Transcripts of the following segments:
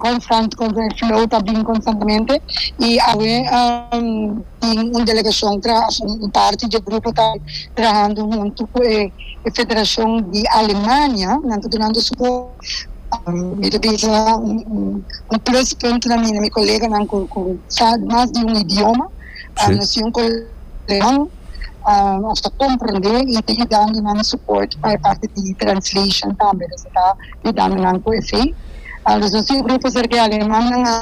Constant Contact Flow ta bin constantemente y awe tin un delegacion tra un parti dje grupo ta trahando hunto cu e federacion di Alemania nan ta dunando support mi ta bisa un plus punt na mi na mi coleganan cu sa mas di un idioma nos tin un coleganan nos ta comprende y ta yudandonan support pa e parti di translation tambe nos a ta di danonan cu efin. Alus nos tin un grupo cerca e alemannan a.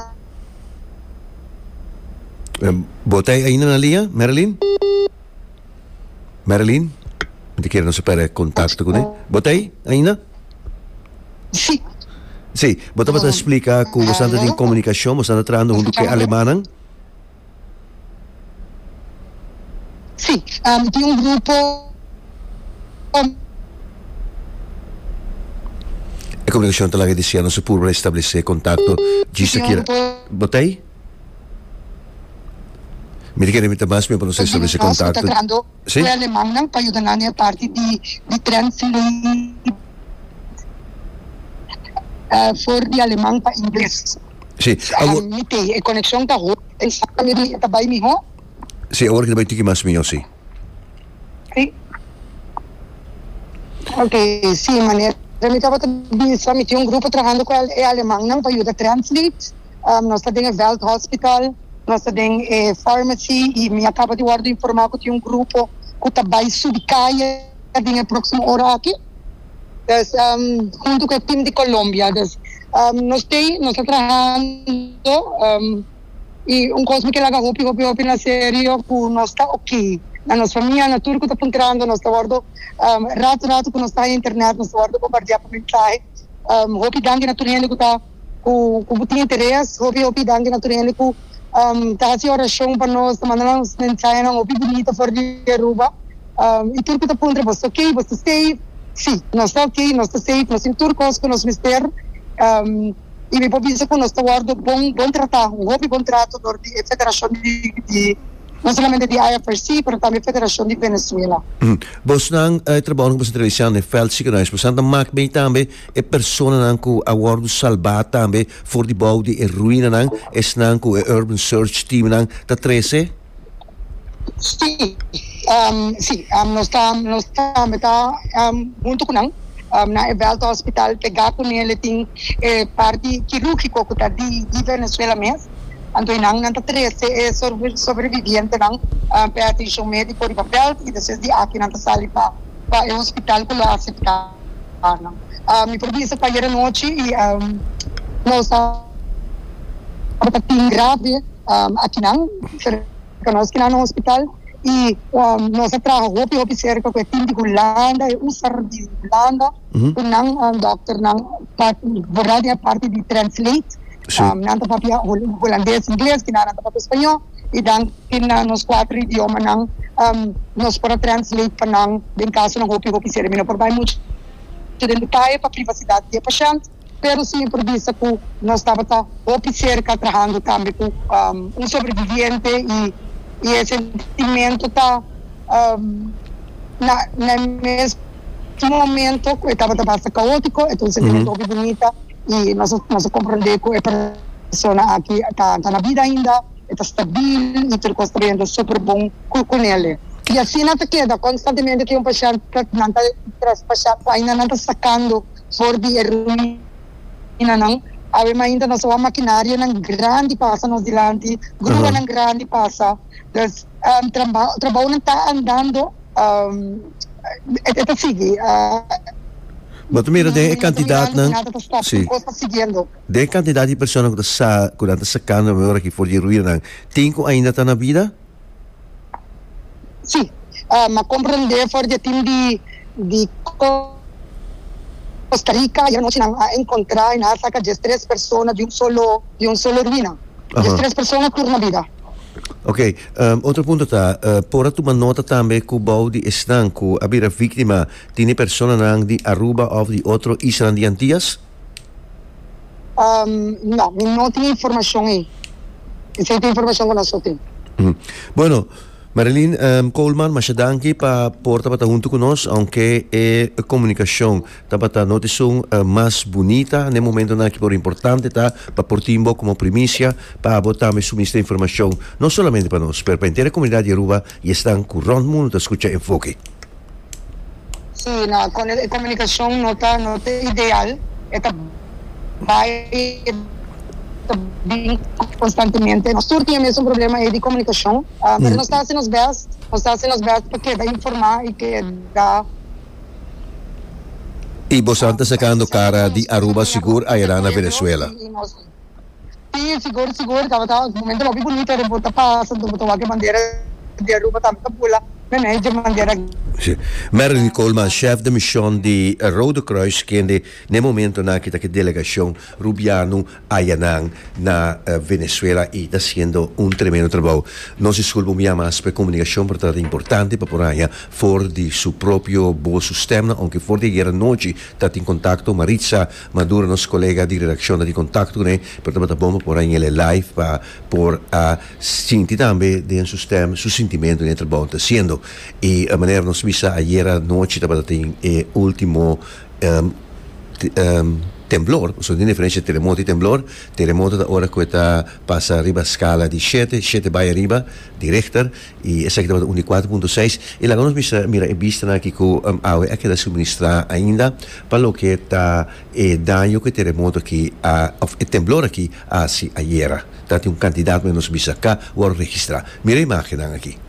Bo ta ainda na linea, Marilyn? Marilyn? Miti kere nos a perde e contacto cu ne. Bo ta ainda? Si. Si, bo tabata splica cu boso anda tin comunicacion, boso anda trahando hunto cu e alemannan. Sí, tin un grupo. E komunikashon ta laga di siñal nos a purba restableser kontakto djis ta kira. Bo ta ei? Mi ta kere mi ta bas men pa nos restableser kontakto. Fue alemangnan pa yuda nan e parti di di tren fleet for di alemang pa ingles. Sí, awor. Ham mi tei e konekshon ta ho e sa ta mira e ta bai mihó. Sí, awor ki ta bai tiki mas mihó, sí. Sí. Ok, sí, manera mi tabata bisa mi tin un grupo trahando ku e alemangnan pa yuda tren fleet. nos ta den e vèldhòspitaal, nos ta den e fàrmasi i mi a kaba di wòrdu informá ku tin un grupo ku ta bai subi kaye den e próksimo ora aki. Pues huntu ku e tim di Colombia. Pues nos ta ei, nos ta trahando i un kos mi ke laga hopi hopi hopi na serio ku nos ta oki. Na nos famia, na tur ku ta puntrando nos ta wòrdu ratu ratu ku nos ta den internet nos ta wòrdu bombardiá pa mensahe. Hopi danki na tur hende ku ta. Ku ku bo tin interes. Hopi hopi danki na tur hende ku ta hasi orashon pa nos, ta manda nos mensahenan hopi bunita for di Aruba. I tur ku ta puntra, Boso ok? Bo ta safe? Sí, nos ta ok, nos ta safe, nos tin tur kos ku nos mester. I mi por bisa ku nos ta wòrdu bon bon tratá, un hopi bon trato dor di e federashon di, no solamente di IFRC, pero tambe federashon di Venezuela. Bosnan, e trabounan ku boso ta realisá na e vèldsiekenhuis, boso a mak mei tambe. E personanan ku a wòrdu salbá tambe for di bou di e ruinanan esnan ku e Urban Search Teamnan ta trese? Sí. Sí. Nos ta nos tambe ta huntu ku nan na e Veld Hospital pegá ku nel. E tin e parti kirúrgiko ku ta di di Venezuela mes. Anto esnan nan ta trese e sobrevivientenan p'e atenshon médiko riba Veld i despues di aki nan ta sali pa e hospital ku lo aseptá. Mi por bisa cu ayer anochi nos tabata tin grave akinan, cerca nos kinan na hospital y nos a traha hopi hopi cerca cu e team di Hulanda, e user di Hulanda cu nan doctornan ta worda di e parti di translate. Nan ta papia hulandes, ingles, kinan nan ta papia spañó i dan tin na nos kuater idiomanan nos por a translate pa nan den kasonan hopi hopi sera. Mi no por bai muchu den detaye pa privasidat di e pashènt, pero si mi por bisa ku nos tabata hopi serka trahando tambe ku un sobreviviente i e sentimento ta na e mes momento ku e tabata basta kaótiko e ta un sentimento hopi bunita. y nos nos a comprende cu e persona aki ta ta na bida ainda e ta stabil y tur cos ta yendo super bon cu cu nele y asina ta keda constantemente ki un pashent ta nan ta traspasha cu ainda nan ta sacando for di e ruinanan awe mainta nos a wak makinarionan grandi pasa nos dilanti gruanan grandi pasa Pues trabounan ta andando, e ta sigui. Bo ta mira den e cantidadnan, si, den e cantidad di personanan cu ta sa, cu nan ta sacando nan member aki for di e ruinanan, tin cu ainda ta na bida? Si, m'a comprende for di e team di Costa Rica, ayer anochi nan a encontra y nan a saca diestres persona di un solo, di un solo ruina. Diestres persona tur na bida. Ok, otro punto ta, por a tuma nota tambe ku bou di esnan ku a bira víktima tin e personanan di Aruba òf di otro islanan di Antias? No, mi no tin e informashon ei. Esei ta e informashon ku nos a tin. Bueno, Marilyn Coleman, masha danki pa por tabata huntu ku nos, aunke e komunikashon Tabata notisun mas bunita na e momentonan aki pero importante ta pa por tin bo komo primicia pa abo tambe suministra informashon no solamente pa nos pero pa henter e komunidat di Aruba i esnan ku rònt mundu ta skucha Enfoke. Si na e komunikashon no ta no ta ideal e ta bai i e ta bin konstantemente. Nos tur tin e mesun problema ei di komunikashon pero nos ta hasi nos bèst nos ta hasi nos bèst pa keda informá i keda. Y bosan ta sacando cara di Aruba sigur ayera na Venezuela. Si, sigur, sigur. Tabata un momento hopi bunita den por ta pasa, entonces bo ta wak e bandera di Aruba tambe ta bula na mes dje bandera aki. Si. Marilyn Coleman, chef de mision di Rode Kruis, kende na e momento naki ta ki delegacion Rubiano ayanan na Venezuela y ta haciendo un tremendo trabao. Nos disculpa un bia mas p'e comunicacion pero ta importante pa por haya for di su propio boos su stemnan aunke for di ayer anochi ta tin contacto Maritza Maduro nos colega di redaccion ta tin contacto cu n'e pero tabata bon pa por a yin'e live pa por a sinti tambe den su stem su sintimento den e trabao n'e ta haciendo y manera nos bisa ayer anochi tabata tin e ultimo Temblor, pasobra tin diferensha entre teremoto y temblor, teremoto ta ora cu e ta pasa riba scala di shete, shete bay ariba, di Richter, y esaki tabata un di cuatro punto seis, y laga nos bisa mira e bistanan aki cu awe a keda suministra ainda pa loke ta e daño cu e teremoto aki a, of e temblor aki a haci ayera, ta tin un cantidad, nos bisa, ca worde registra. Mira e imagennan aki.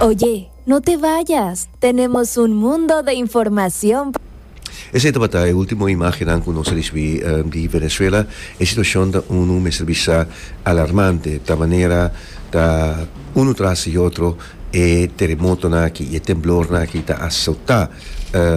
Oye, no te vayas, tenemos un mundo de informacion pa. Esei tabata e ultimo imagennan cu nos a ricibi di Venezuela. E situacion ta unu mester bisa alarmante ta manera ta unu tras di otro e teremotonan aki y e temblornan aki ta azota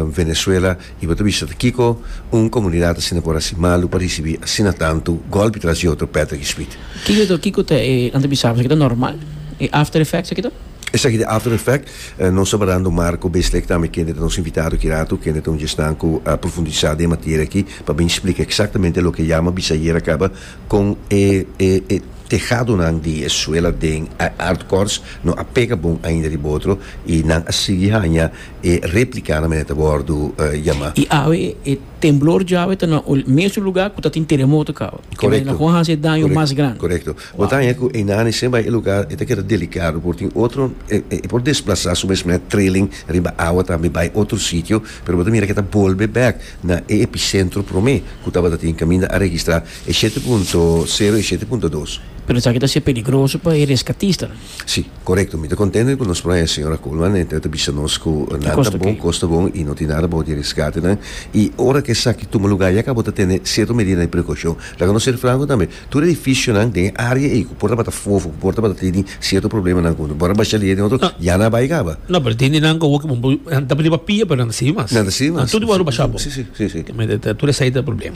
Venezuela. Y bo ta bisa ta kico un comunidad asina por haci malu pa ricibi asina tantu golpi tras di otro peta ki spit. Kico y dor kico ta e anta bisaba? Esaki ta normal? E after effect esaki ta? Esaki ta after effect. Nos ta barando Marco Beesleck tambe kende ta nos invitado ki rato, kende ta un djesnan cu a profundisa den e materia aki pa bin splica exactamente loke yama bisa ayer a caba con e e e tehadonan di e suela den e hardcores no a pega bon ainda riba otro y nan a sigui hanja e replica nan mene ta wordo yama. Y awe e temblor djawe ta na ul mesun lugar cu ta tin teremoto cabo. Correcto. Kibay na con haci e daño mas grandi. Correcto. Bo ta haña cu Einan y Sembay e lugar e ta keda delicado por tin otro e por desplaza su mes met trailing riba awa tambe bay otro sitio pero bo ta mira cu e ta bolbe back na e epicentro prome cu tabata tin caminda a registra e shete punto sero y e shete punto dos. Pero esaki ta ser peligroso pa e rescatista nan. Sí, korekto. Mi ta kontente ku nos playa señora Coleman e ta bisa nos ku nan ta bon, kos ta bon i no tin nada bou di e resgatenan. I ora ku esaki tuma lugá yaka bo ta tene sierto medida di prekoushon. Laga nos ser franko tambe, tur e edifishonan den e área ei ku por tabata fofo, ku por tabata tini sierto problemanan ku bo a basha di e den otro, ya nan a bai kaba. No, pero tin di nan ku awor bo ta pidi pa pia pero nan ta sigui mas. Nan ta sigui mas. Nan tur wou a basha bo. Sí, sí, sí, sí. Tur esei ta e problema.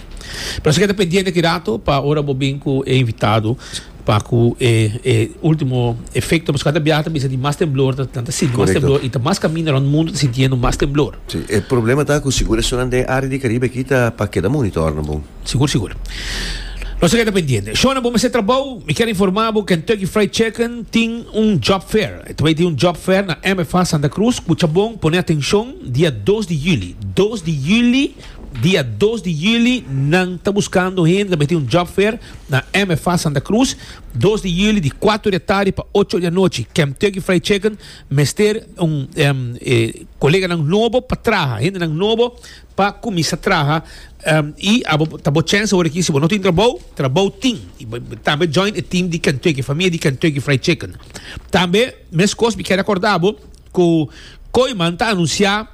Pero esaki ta pendiente ki rato pa ora bo bin ku e invitado. pa ku e e ultimo efekto pask kada biaha ta bisa di mas temblor ta nan ta sinti mas Correcto. temblor i ta mas kaminda rond mundu ta sintiendo mas temblor. Sí, e problema ta ku sigur esunnan den área di Karibe aki ta pa keda monitor nan bon. Sigur sigur. Nos ta keda pendiente. Shona bo mester trabou. Mi kier informá bo Kentucky Fried Chicken tin un job fair. E ta bai tin un job fair na MFA Santa Cruz. Kucha bon, pone atenshon, dia dos di yüli. Dos di yüli. Dia dos di juli nan ta buskando hende na mihtin un job fair na MFA Santa Cruz, dos di juli di kuater di atardi pa ocho di anochi. Kemtucky Fried Chicken mester un koleganan nobo pa traha, hendenan nobo pa kuminsa traha i abo ta bo chèns awor aki si bo no tin trabou, trabou tin. Tambe join e tim di Kemtucky, famia di Kemtucky Fried Chicken. Tambe. Meskos mi kere korda bo ku Kooiman ta anunsiá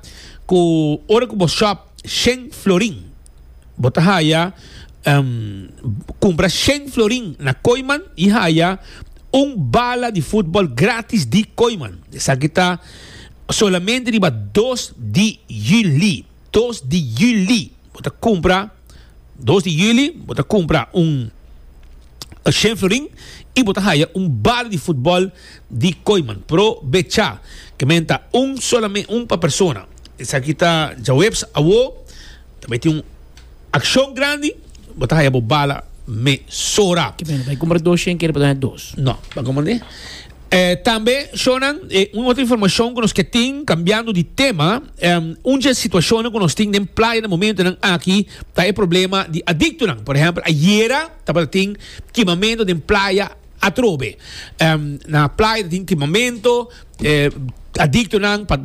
ku ora ku bo shòp shen florin bo ta haya kumpra shen florin na Kooiman i haya un bala di futbòl gratis di Kooiman. Esaki ta solamente riba dos di yüli. Dos di Juli bo ta kumpra dos di Juli bo ta kumpra un Shane Florin i bo ta haya un bala di futbòl di Koyman. Pro becha kementa un solamen un pa persona. Esaki ta djaweps awo. Ta bay tin un akshon grandi. Bo ta haya bo bala mesora. Kementa bay kumpra dos Shane kere pa ta haya dos. No, bo ta kumpra un. Tambe shonnan, e un otro informacion cu nos ke tin, cambiando di tema, un dje situacionnan cu nos tin den playa na momentonan aki ta e problema di adictonan. Por ehempel, ayera tabata tin kimamento den playa atrobe. Na playa ta tin kimamento, e adictonan pa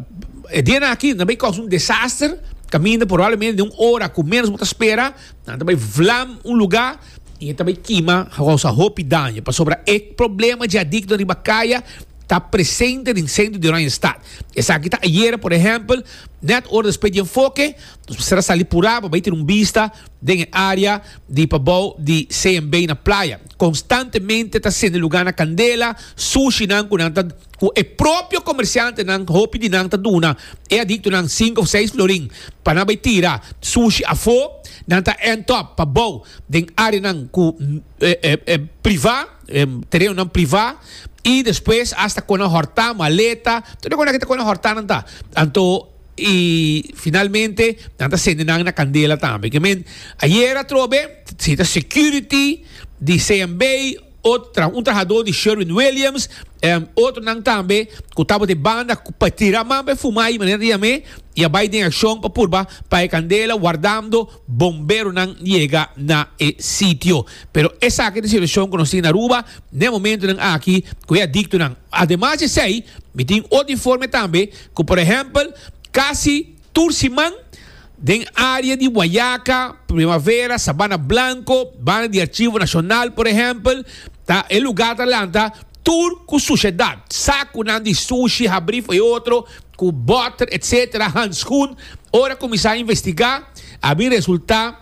e dianan aki nan ta bay causa un desaster caminda probablemente den un ora cu menos bo ta spera nan ta bay vlam un lugar. y e ta bay kima housa hopi daño pasobra e problema dje adicto riba kaya ta presente den centro di Oranje Stad. Esaki ta ayera por ehempel net ora despues di enfoke nos mester a sali pura pa bay tin un bista den e area di pabao di CMB na Playa. Constantemente ta sende lugar na candela, sushi nan cu nan ta. ku e propio komersiantenan hopi di nan ta duna e adiktonan sink òf seis florin pa nan bai tira sushi afó, nan ta èntòp pa bou den áreanan ku privá, terenonan privá, i despues asta kona hòrtá, maleta, tur e kos nan ke ta kona hòrtá nan ta. Anto i finalmente nan ta sende nan na kandela tambe. Ke men ayera atrobe, si ta security di CMB. Otro, un trahadó di Sherwin-Williams, otronan tambe ku tabatin banda pa tira man pa e fumá i manera di yam'é i a bai den akshon pa purba pa e kandela wardando bomberonan yega na e sitio. Pero esaki ta e situashon ku nos tin na Aruba n'e momentunan aki ku e adiktonan. Ademas di esei mi tin otro informe tambe ku por ehèmpel kasi. Tur siman den área di Guayaca, Primavera, Sabana Blanco, banda di Archivo Nacional por ehèmpel, ta e lugá ta lanta tur ku sushedat, sakunan di sushi habrí for e otro ku bòter etc. Hanskun ora kuminsá investigá a bin resultá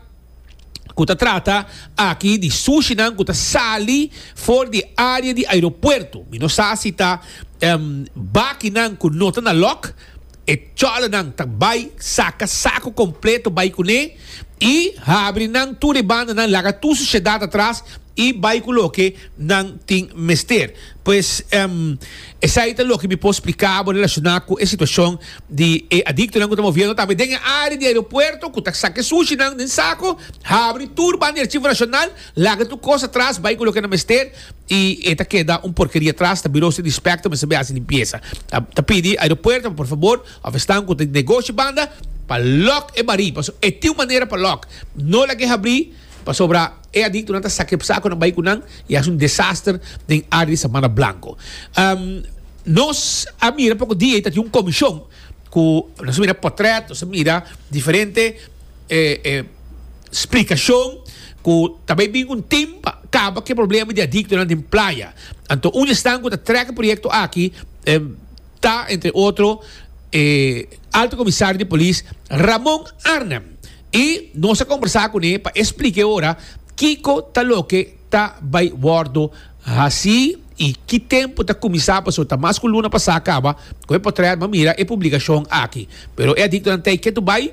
ku ta trata aki di sushinan ku ta sali for di área di aeropuerto, mi no sa si ta bakinan ku no ta na lòk. E chòlònan ta bai saka saku kompleto bai kuné i habri nan tur e bandanan, laga tur susiedat atras i bai ku loke nan tin mester. Pues, esei ta loke mi por spliká bo relashoná ku e situashon di e adiktonan ku ta moviendo tambe den e área di aeropuerto, ku ta saka e sushinan den saku, habri tur banderchi frashonal, laga tur kos atras bai ku loke nan mester. y e ta keda un porkeria atras ta biroso di Spectrum esabia haci limpiesa ta ta pidi aeropuerto pa por fabor of esnan cu ta negoshi banda pa lock e bari pasobra e tin un manera pa lock no laga e habri pasobra e adictonan ta saca e sacunan bay cu nan y haci un desaster den area di Sabana Blanco nos a mira poco dia y ta tin un comision cu nos a mira potret nos a mira diferente e splikashon ku ta bai bin un tim pa kaba ku e problema di adiktonan den playa. Anto un di esnan ku ta trèk e proyekto aki ta, entre otro, e Alto Komisario di Polis, Ramon Arnhem, i nos a kombersá kuné pa e splik'é ora kiko ta loke ta bai wòrdu hasí i ki tempu ta kuminsá pasobra ta mas ku luna pasá kaba ku e potrèt. Bo a mira e publikashon aki, pero e adiktonan ta e ketu bai.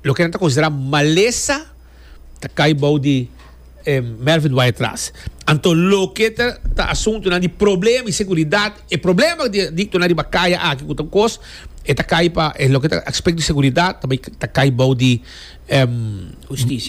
Loke nan ta konsiderá malesa ta kai bou di e Melvin Waitras. Anto loke ta asuntunan di problema i seguridat, e problema di adiktonan riba kaya aki ku ta un kos, e ta kai pa e loke ta aspekto di seguridat ta bai ta kai bou di e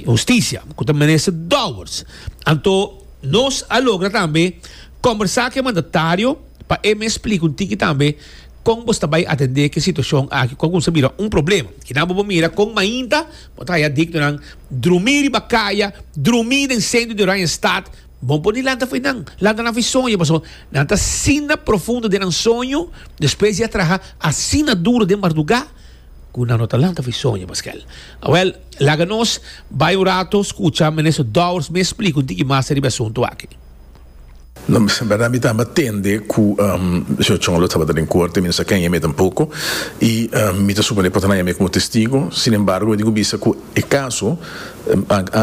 hustisia ku ta menester dòbers. Anto nos a logra tambe kombersá ku e mandatario pa e mes splika un tiki tambe. Kon bo ta bai atendé ki situashon aki ku a kumsa bira un problema? Kinan bo por mira kon mainta bo ta haña dignonan drumí riba kaya, drumí den sentro di Oranjestad? Bon por di lanta fo'i nan, lanta nan fo'i soña, pasobra nan ta asina profundo den nan soño despues di a traha asina duru den mardugá ku nan no ta lanta fo'i soña mas ke el. Awèl, laga nos bai un rato skucha Minister Dowers mi splik'un tiki mas riba e asuntu aki. No, en berdad mi tamba tende cu Sr. Chong lo tabata den corte, mi no sa kenje mi e tampoco, y mi ta supone por ta haya mi como testigo, sin embargo mi tin cu bisa cu e caso,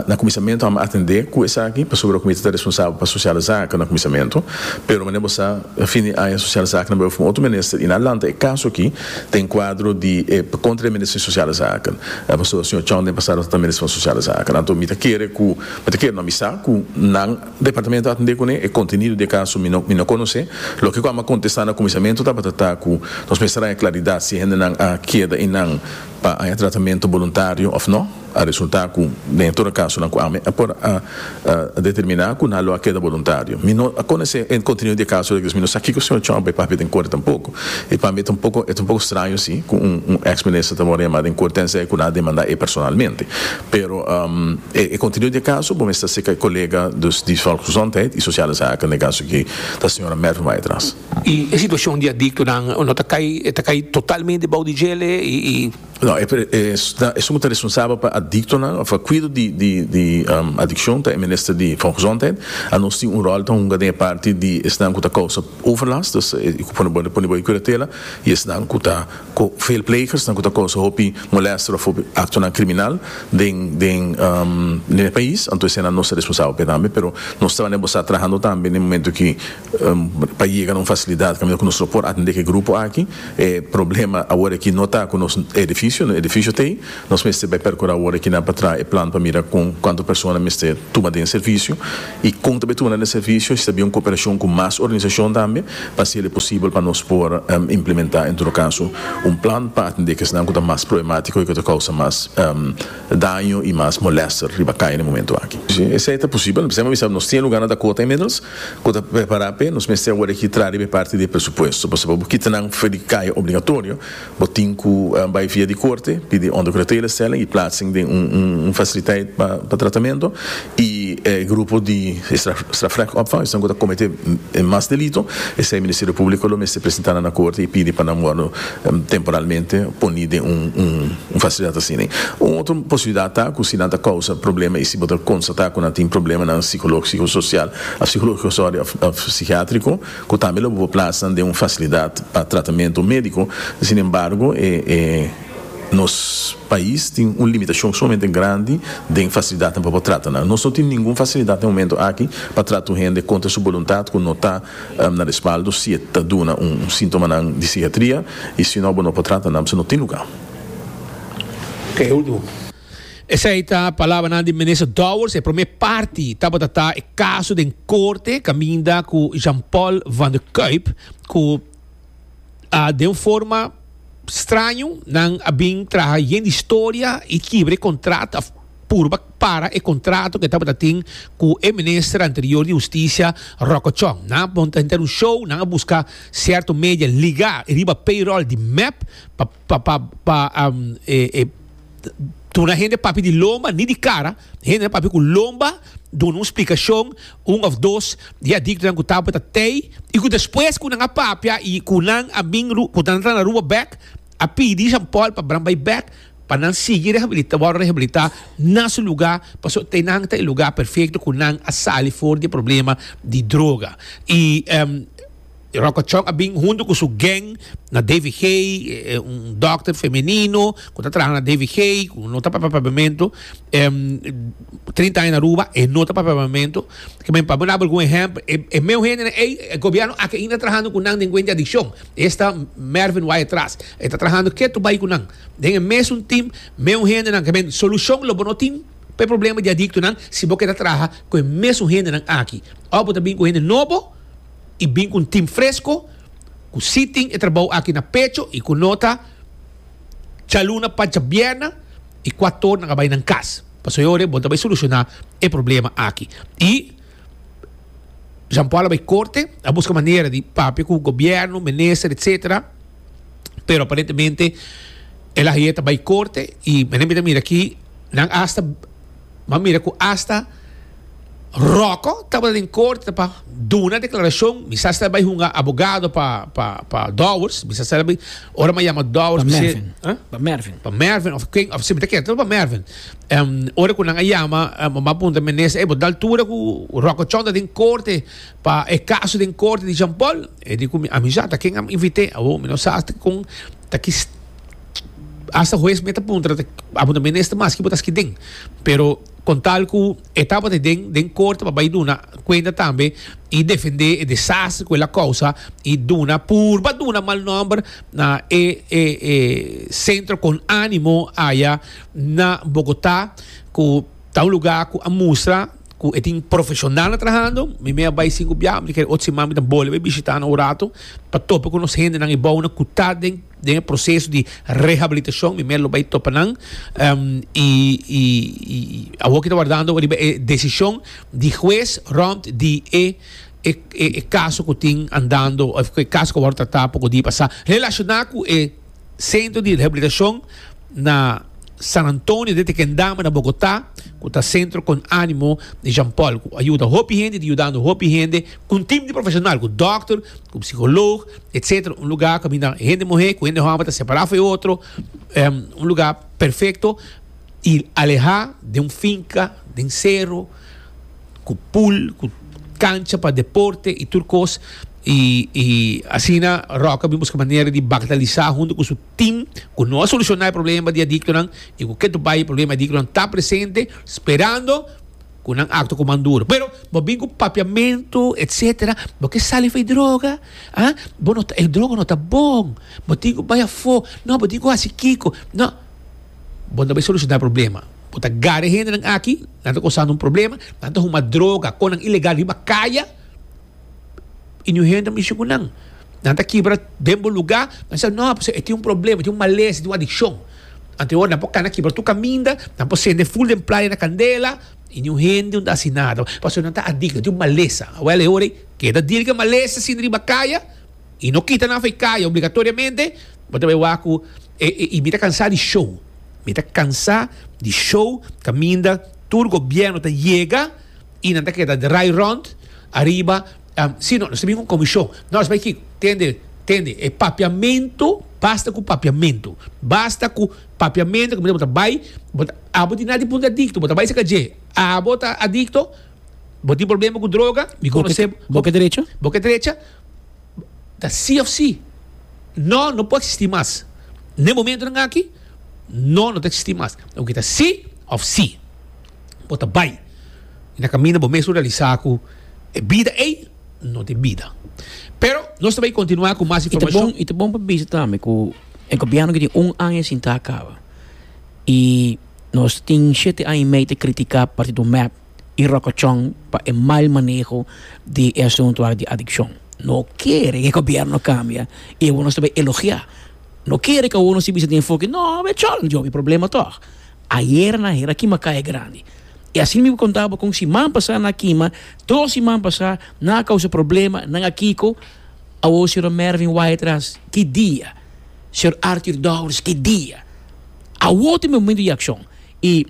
na cuminsamentu amo a atende cu esaki, pasobra cu mi ta responsabel pa Sociale Zaken na cuminsamentu, pero manera bo sa, fin di aña Sociale Zaken a beba for un otro minister y nan lanta e caso aki ta encuadro di e contra e Minister di Sociale Zaken, pasobra Sr. Chong den pasado tabata Minister van Sociale Zaken, anto mi ta kere cu, mi ta kere no, mi sa cu nan. Departamento a tende kune e kontenido di e kaso mi no mi no konosé. Loke ku Amba kontestá na kuminsamentu tabata ta ku nos mester haña klaridat si e hendenan a keda einan pa haña tratamentu boluntario òf nò. A resultá ku den e tur e kasonan ku Ame a por a determiná ku nan lo a keda boluntario. Mi no a konosé e kontenido di e kaso loke di es mi no sa kiko señor Trump a papia den korte tampoko. I pa mi ta un poko e ta un poko straño si ku un un ex minister ta wòrdu yamá den korte tensei ku nan a demandá ei personalmente. Pero e contenido di e caso bo mester seca e colega dus di Volksgezondheid y Sociale Zaken den e caso aki ta señora Merve Weitras. Y e situacion di adictonan no ta cay, e ta cay totalmente bao di djele y. No, e esun bo ta responsabel pa adictonan of pa cuido di adiccion ta e Minister di Volksgezondheid. Anos tin un rol ta hunga den e parti di esnan cu ta causa overlast, dus e cu pone bo e pone bo e curatela y esnan cu ta. cu veelplegers nan cu ta causa hopi molester of hopi actonan criminal den den e pais anto esey nan nos ta responsabel p'e tambe pero nos trabajo n'e bostat trahando tambe n'e momento ki pa yega na un facilidad caminda cu nos lo por atende k'e grupo aki e problema awor aki no ta cu nos edificio nos edificio t'ey Nos mester bai percura awor kinan pa traha e plan pa mira con cuanto persona mester tuma den e servicio y con ta bai tuma na den servicio y si ta bin un cooperacion cu mas organizacion tambe pa haci el e posibel pa nos por implementa en todo caso un plan pa atende akesnan cu ta mas problematico y cu ta causa mas daño y mas molester riba caya na e momento aki. Si esey ta posibel nos mester bisa nos tin e lugarnan ta cota inmiddels cu ta prepara p'e nos mester awor aki traha riba e parti di e presupuesto pasobra bo kitanan for di caya obligatorio Bo tin cu bay via di corte, pidi ondergrondtelecellen y plaatsing den un faciliteit pa tratamento, y e grupo di strafrecht opvang, esnan cu ta comete mas delito, esey Ministerio Publico lo mester presenta nan na corte y pidi pa nan wordo temporalmente poni den un facilidad asina. Un otro posibilidad ta cu si nan ta causa problema y si bo ta constata cu nan tin problema nan psicologico, social, psicologico sorry, of psichiatrico, cu tambe lo bo por plasa den un facilidad pa tratamento medico. Sin embargo, e nos pais tin un limitacion sumamente grandi den facilidadnan pa por trata nan. Nos no tin ningun facilidad na e momento aki pa trata un hende contra su boluntad cu no ta na respaldo si e ta duna un sintomanan di psihiatria y sino bo no por trata nan pasobra no tin lugar. Esei ta palabranan di Minister Dowers. E promé parti tabata ta e kaso den korte kaminda ku Jean Paul van der Kuyp ku a den un forma straño nan a bin traha yen di storia i kibra e kontrato òf purba para e kontrato ku e tabata tin ku e minister anterior di hustisia Rocco Chong. Nan a monta henter un show, nan a buska sierto media ligá riba payroll di mep pa pa pa pa duna hende papia di lomba ni di kara hende na papia ku lomba duna un splikashon un òf dos di adiktonan ku tabata tei i ku despues ku nan a papia i ku nan a bin ku nan a tra na Aruba bèk a pidi Jean Paul pa bran bai bèk pa nan sigui rehabilita wòrdu rehabilita na su luga pasobra tei nan ta e luga perfekto ku nan a sali for di e problema di droga i. Rokochok a bin huntu ku su geng na DVG, un dòkter femenino ku ta traha na DVG ku no ta papia papiamentu, trinta aña na Aruba e no ta papia papiamentu. Kimen pa bo dal algun ehèmpel, e meu hendenan ei e gobièrnu aki ainda ta trahando ku nan den kuent di adikshon. Esta Mervin wak atras, e ta trahando ke tur bai ku nan. Den e mesun tim, meu hendenan, kimen solushon lo bo no tin pa e problema di adiktonan si bo ke ta traha ku e mesun hendenan aki. Òf bo ta bin ku hende nobo. y bin cu un team fresco cu si tin e trabao aki na pecho y cu no ta djaluna pa djabierna y cua toer nan a bay nan cas. Pasobra e ora bo ta bay soluciona e problema aki. Y Jean Paul a bay corte, a busca manera di papia cu gobierno, minister etcetera, pero aparentemente el ahier ta bay corte y mira aki nan hasta. Bo a mira ku asta Rocco tabata den korte pa duna deklarashon. Mi sa ser bai hunga abogado pa, pa, pa Dowers. Mi sa ser bai, ora mi a yama Dowers, mi ser. Mervin. Pa Mervin. Pa Mervin, of ken, of si mi ta kere, pa Mervin. Um, ora ku nan a yama, um, ma punta menes, e bo dal tura ku Rocco Chong ta den korte pa e kaso den korte di Jean Paul. E di ku mi, a mi sa ta ken a mi invite, abo mi no sa kon ta ki Hasta hues mi ta puntra ta abo ta minister maski bo ta ski den pero con tal cu e tabata den den corte pa bay duna cuenta tambe y defende e desastre cu el a causa y duna purba duna mal nomber na e e e centro con animo aya na Bogota cu ta un lugar cu a mustra cu e tin profesional nan trahando mi me a bay sin cu biaha mi ta kere otro siman mi ta bolbe bishita nan un rato pa topa cu nos hendenan y bounan cu ta den den e proceso di rehabilitacion mi mester lo bay topa nan y awor ki ta wardando riba e decision di huez rond di e e caso cu tin andando of e caso cu a word trata poko dia pasa relaciona cu e centro di rehabilitacion na San Antonio den ta ken dama na Bogotá ku ta sentro kon ánimo di Jean Paul ku a yuda hopi hende i ta yudando hopi hende ku un tim di profeshonal ku dòkter ku psikolog etcetera un lugá ku a binda hende muhé ku hende hòmber ta separá afo e otro un lugá perfekto i alehá den un finka den sero ku pul ku kancha pa deporte i tur kos i asina Ròk a bin buska manera di baktalisá huntu ku su Tin cu no a soluciona e problema di adictonan y cu ke tobai e problema di adictonan ta presente sperando cu nan acto cu man duro. Pero bo bin cu papiamento etc. Bo ke sali for e droga. Ha? Bo no ta, e droga no ta bon. Bo tin cu bay afo. No, bo tin cu haci kico. No. Bo no ta bay soluciona e problema. Bo ta gara e hendenan aki, nan ta cosando un problema, nan ta huma droga con nan ilegal riba caya. y niun hende ta mishi cu nan. Nan ta kibra den bo lugar, nan bisa no, pasobra e tin un problema, e tin un malesa, e tin un adiccion. Anto e ora nan por cana kibra tur caminda, nan por cende ful den playa na candela y niun hende no ta haci nada, pasobra nan ta adicto, nan tin un malesa. Awel e ora ei, keda dir cu e malesa ta sinti riba caya y no kita nan afe caya obligatoriamente, bo ta bay wak cu y mi ta cansa di show, mi ta cansa di show caminda tur gobierno ta yega. y nan ta keda draai rond ariba si no nos ta bin un comision no nos bai kiko tende tende e papiamento basta cu papiamento basta cu papiamento cu bo ta bai bo ta abo tin nada di punto adicto bo ta bai cerca dje abo ta adicto bo tin problema cu droga mi conoce bo bo ke derecha bo ke derecha ta si of si no no por existi mas ne momentonan aki no no ta existi mas oke ta si of si. bo ta bai y na caminda bo mes lo realisa cu e bida ey no tin bida. Pero nos ta bai continua cu mas informacion. Y ta bon pa bisa tambe cu e gobierno que tin un aña sin ta caba y nos tin shete aña y medio ta critica Partido Mep y Rocochon pa e mal maneho di e asunto aki di adiccion. No kere cu e gobierno cambia y awor nos ta bai elogia. No kere cu awor nos tin bisa den enfoke no, e chol, e problema tog. Ayer nan hera kima kaya grandi. I asina mi konta bo kon si man pasá nan a kima, tro siman pasá nan a kousa problema, nan a kiko, awo señor Mervin Waidras ki dia, señor Arthur Dowers ki dia. Awo ta e momento di akshon. I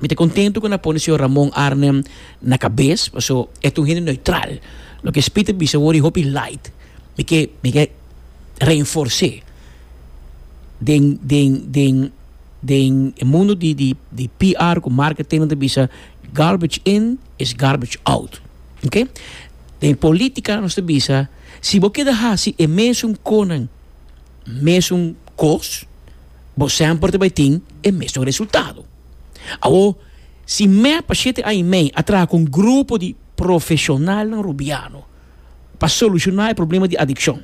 mi ta kontentu ku nan a pone señor Ramon Arnem na kabes, paso e ta un hende neutral. Loke Spit ta bisa awor i hopi light. Mi ke mi ke reenfors'é den den den. Den e mundo di di di PR ku marketing nan ta bisa garbage in is garbage out ok. Den e politika nos ta bisa si bo keda hasi e mesun konan mesun kos bo semper ta bai tin e mesun resultado. Awo si mep pa shete aña i mei a traha ku un grupo di profeshonalnan rubiano. pa solushoná e problema di adikshon.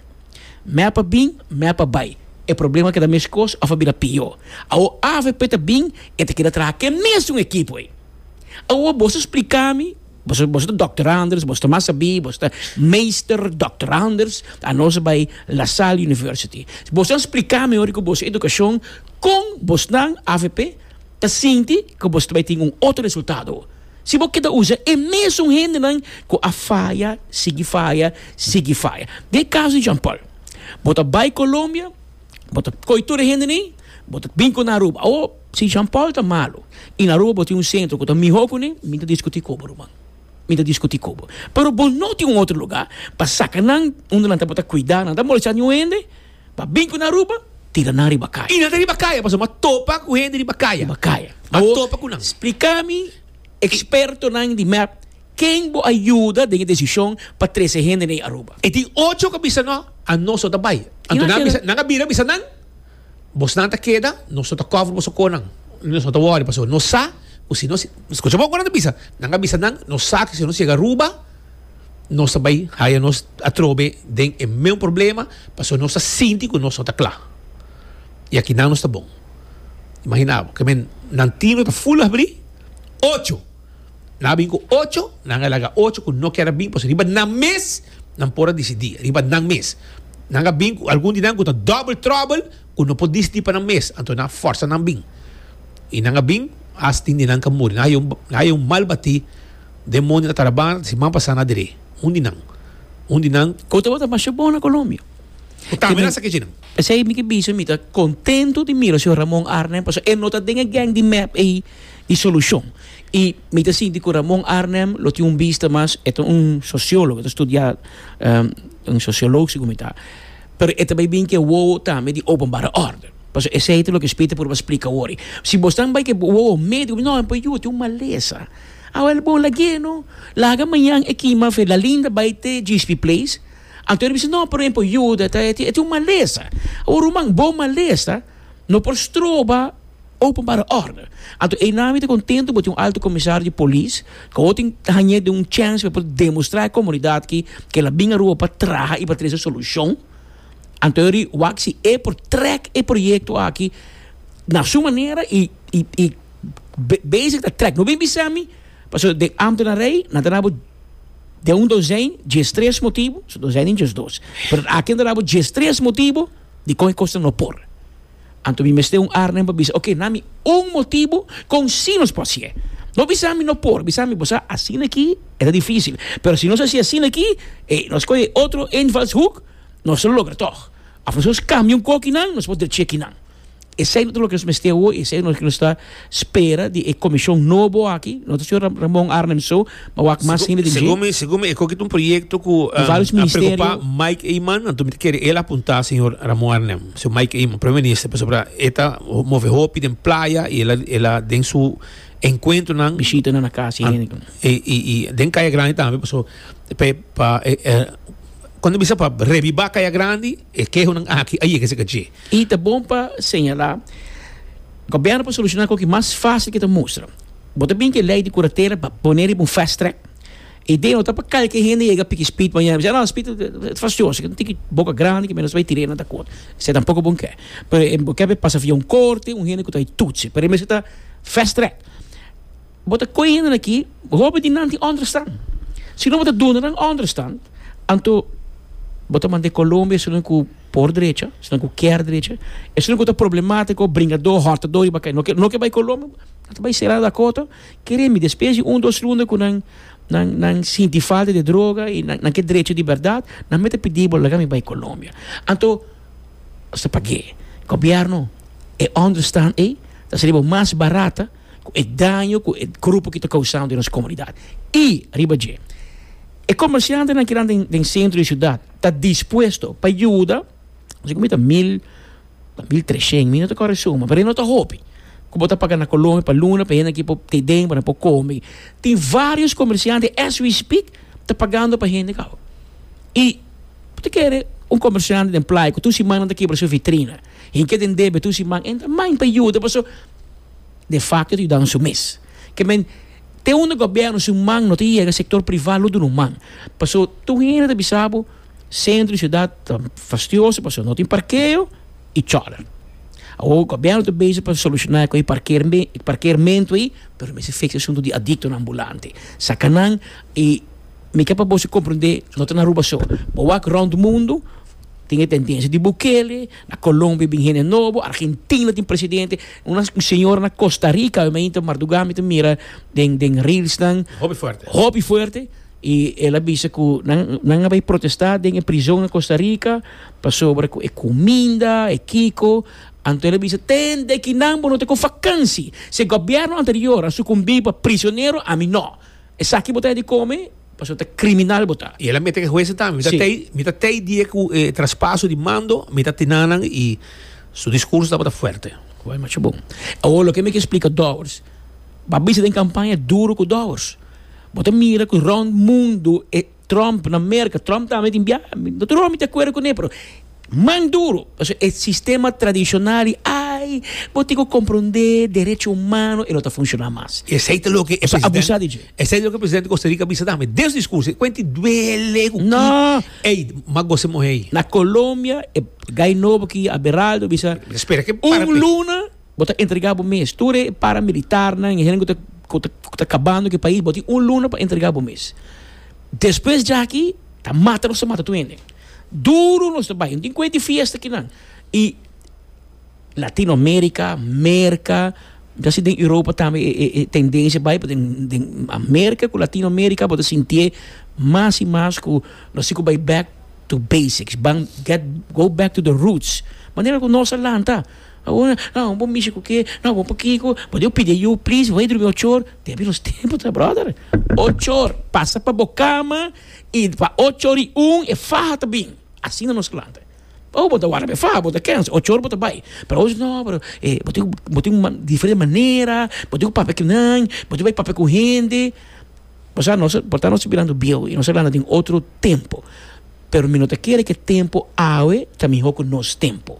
Mè pa bin, mè pa bai, e problema a keda meskos òf a bira pió. Awor avp ta bin, e ta keda traha ke mesun ekipo ei. Awor boso splika mi, boso boso ta dòkter Anders, boso ta mas sabí, boso ta Meester Dòkter Anders, anos a bai LaSalle University. Boso a splika mi ora ku boso edukashon kon bosnan avp ta sinti ku boso ta bai tin un otro resultado. Si bo keda usa e mesun hendenan ku a faya, sigui faya, sigui faya. Den e kaso di Jean Paul, bo ta bai Colombia, bo ta koge tur e hende nei, bo ta bin ku nan Aruba. Awor, si Jean Paul ta malu i na Aruba bo tin un sentro ku ta mihó kuné, mi ta diskutí ku bo, ruman. Mi ta diskutí ku bo. Pero bo no tin un otro lugá pa saka nan unda nan ta por ta kuidá, nan ta molestá niun hende. Pa bin ku na Aruba, tira nan riba kaya. I nan ta riba kaya, pasobra a topa ku hende riba kaya. Riba kaya. A topa ku nan. Splika mi ekspertonan di mep ken bo a yuda den e desishon pa trese hende na e Aruba. E tin ocho ku a bisa no, Anos no ta bai. Anto nan a bisa, nan a bira a bisa nan, Bosnan ta keda, nos no ta kòver boso konan. Nos no ta wòri, pasobra nos sa ku si nos, skucha bon ku nan ta bisa, nan a bisa nan, nos sa ku si nos yega Aruba, nos ta bai haya nos atrobe den e meun problema pasobra nos ta sinti ku nos no ta kla. I aki nan nos ta bon. Imagina bo, kimin nan team ta full habri, ocho nan a bin ku ocho, nan a laga ocho ku no kier a bin pasobra riba nan mes nan por a disidí, riba nan mes. Nan a bin ku algun di nan ku ta double trouble ku no por disidí pa nan mes, anto nan a forsa nan bin. I nan a bin, has tin di nan ka muri. Nan haya un, nan haya un mal batí. Demonio ta tarabana ta si man pasa na dre. Un di nan. Un di nan. Cu tabata masha bon na Colombia. Cu ta amenaza ke djinan. Esey mi ke bisa mi ta contento di mira señor Ramon Arnem pasobra e no ta den e gang di mep ey di solucion. Y mi ta sinti cu Ramon Arnem lo tin un bista mas, e ta un sociologo, e ta studia un sociolog segun mi ta. Pero e ta bay bin cu e wowo tambe di openbare orde. Pasobra esey ta loke Spita por a splica awor. Si bo esnan bay cu e wowo medio, mi ta bay no, e por a yuwe tin un malesa. Awel bon lagu'e no. Laga mañan e kima fe la Linda bai te Gispi Place. Anto e ta bisa no por ehemplo yuda ta e tin un malesa. Awor ruman bo malesa no por stroba openbare orde. Anto einan mi ta contento bo tin un Alto Comisario di Polis cu awor tin hañ'e den un chance pa e por demostra e comunidad aki cu ela bin aruba pa traha y pa trese solucion. Anto eri wak si e por trek e proyecto aki na su manera y y y. Bezig ta trek. No bin bisa mi, paso den Ambtenarij nan ta dabo den un dosijn djestres motibu, so dosijn den djesdos. Pero aki nan ta dabo djestres motibu di kon e kosnan no por. Anto mi mester un arnen pa bisa, oke, nami un motibu kon si nos por hasié. No bisa mi no por, bisa mi bo sa asina aki e ta difisil. Pero si nos hasi asina aki, e nos kohe e otro invalshoek, nos lo logra tog. Of nos kambia un kokinan, nos por drechia kinan. Esei no ta loke nos mester awo, esei no loke nos ta spera di e komishon nobo aki, no ta señor Ramon Arnhem so, ma wak mas hende den dje. Segun mi, segun mi e koki ta un proyekto ku a preokupa Mike Eman, anto mi ta kere el a punta señor Ramon Arnhem, señor Mike Eman, Primer Minister, pasobra e ta move hopi den playa i el a den su enkuentronan, bishitanan na kas di hende, i den Kaya Grandi tambe, pasobra pa kuen ta bisa pa reviva Kaya Grandi. E kehonan aki a yega esaka dje. I ta bon pa señalá, Gobierno por solucioná cu aki mas fácil cu e ta mustra. Bo ta bin cu e ley di curatela pa poné riba un fast track. Idea no ta pa calke hende yega piki speed mañana. Bisa, No, speed ta fastioso. Esaki ta tin ki boca grandi cu menos bay tira. E no ta akord. Esaki tampoco bo no ke. Pero bo ke bay pasa via un corte, un hende cu ta bay tutsi. Pero e mester ta fast track. Bo ta koe hende aki, hopi di nan tin ònderstan. Si no bo ta duna nan ònderstan, anto bo ta manda e Colombia esnan ku por drecha, esnan ku kier drecha, esnan ku ta problemátiko, bringadó, hòrtadó riba kai, no ke no ke bai Colombia, nan ta bai será Dakota. Kere mi, despues di un dos runda ku nan nan nan sinti falta di e droga i nan ke drecha di bèrdat, nan mei ta pidi bo laga mi bai Colombia. Anto esta pag'é. Gobièrnu, e ònderstan ei ta sali bo mas barata. ku e daño ku e grupo ki ta kousando den nos komunidat. I riba dje, e komersiantenan ki nan den sentro di siudat ta dispuesto pa yuda, asina ku mi ta mil, mil treshen, mi no ta kore e suma, pero e no ta hopi ku bo ta paga na Colombia pa luna pa e hende ki por te den pa nan por kome. Tin varios komersiante as we speak ta pagando pa hende kaba. I bo ta kere un komersiante den playa ku tur siman nan ta kibra su vitrina, hinke den debe tur siman, e ta mind pa yuda paso. de facto ta yuda nan su mes. Ke men, te unda gobierno su man no ta yega, sector priva lo dunu man. Paso, tur hende ta bisa bo, centro di ciudad ta fastioso paso no tin parkeo y chòler. Awor, gobierno ta bezig pa soluciona cu e parkeerme, e parkeermento ei, pero mester fix e asunto di adictonan ambulante. Saca nan y mi ke pa boso comprende, no ta na Aruba so. Bo wak rond mundo, tin e tendencia di Bukele, Na Colombia bin hende nobo, Argentina tin presidente, una un señora na Costa Rica, mi inter marduga mi ta mira den den reelsnan, Hopi fuerte. hopi fuerte, y el a bisa cu nan nan a bay protesta den e prizon na Costa Rica pasobra cu e cuminda, e kiko, anto el a bisa ten de kinan bo no ta con vakansi, si e gobierno anterior a sucumbi pa prisionero, ami no, esaki bo ta e di come? Pasobra ta criminal bo ta. Y el a mete e huezen tambe. Mi ta Sí. tei, mi ta tei die cu e traspaso di mando, mi ta tinanan y su discurso tabata fuerte. Guai macho bon. Awor loke mi ke splica Dowers, ba bisa den campaña duro cu Dowers. Bo ta mira cu rond mundo e Trump na Merca, Trump tambe tin bia, no ta roa mi ta acuerdo cune, pero Mas duro, pasobra e sistema tradishonal di ai, bo tin ku komprondé derecho humano e no ta funshoná mas. I esei ta loke e presidente. Bo ta abusá di dje. Esei ta loke e presidente di Costa Rica a bisa tambe den su discurso. I kuenti duele ku ki ei, mas gosi mohe ei. Na Colombia e gai nobo ki Aberaldo a bisa, un luna bo ta entregá bo mes. Tur e paramilitarnan, e hende ku ta kabando ku e pais, bo tin un luna pa entregá bo mes. Despues djaki ta mata nos ta mata tur hende. Duru nos ta bai, tin kue di fiesta kinan y Latino America, Merca, mi ta sinti den Europa tambe e e tendencia bai pasobra den America cu Latino America bo ta sintié mas y mas cu nos así cu bai back to basics, ban get go back to the roots, manera cu nos a lanta, awor nan bo mishi cu ke, nan bo pakico, bo debe pidi ayu please, bo bay drumi ochor, tempo y nos tempo ta brother, ochor pasa pa bo cama. I pa ocho ri un e faha ta bin. Asina nos klante. Oh, bo ta wara pa e faha, bo ta kensa, ocho ora bo ta bai. Pero ochi no, pero e, bo tin ku, bo tin ku diferente manera, bo tin ku papia ku nan, bo tin ku bai papia ku hende. Bo sa, nos a, por ta nos a mirando bieu i nos a lanta den otro tempu. Pero mi no ta kere ku e tempu awe ta mihó ku nos tempu.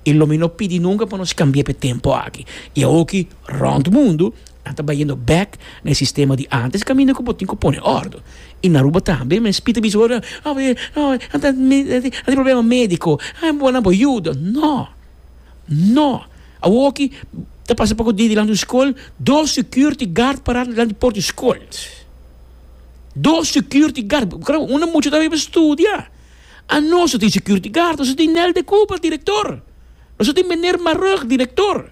I lo mi no pidi nunka pa nos kambia pa e tempu aki. I awoki. Rond mundu, nan ta bayendo bek na e sistema di antes kaminda ku bo tin ku pone òrdu. I na Aruba tambe men spita bisa bo, Awe, awe, nan ta tin problema médiko, a bo nan por yuda. No! No! Awoki ta pasa poko dia dilanti un skol, dos security guard pará dilanti di por di skol. Dos security guard, unda mucha ta riba studia. Anos no tin security guard, nos a tin Nel de Cuba, direktor. Nos a tin meneer Marug, direktor.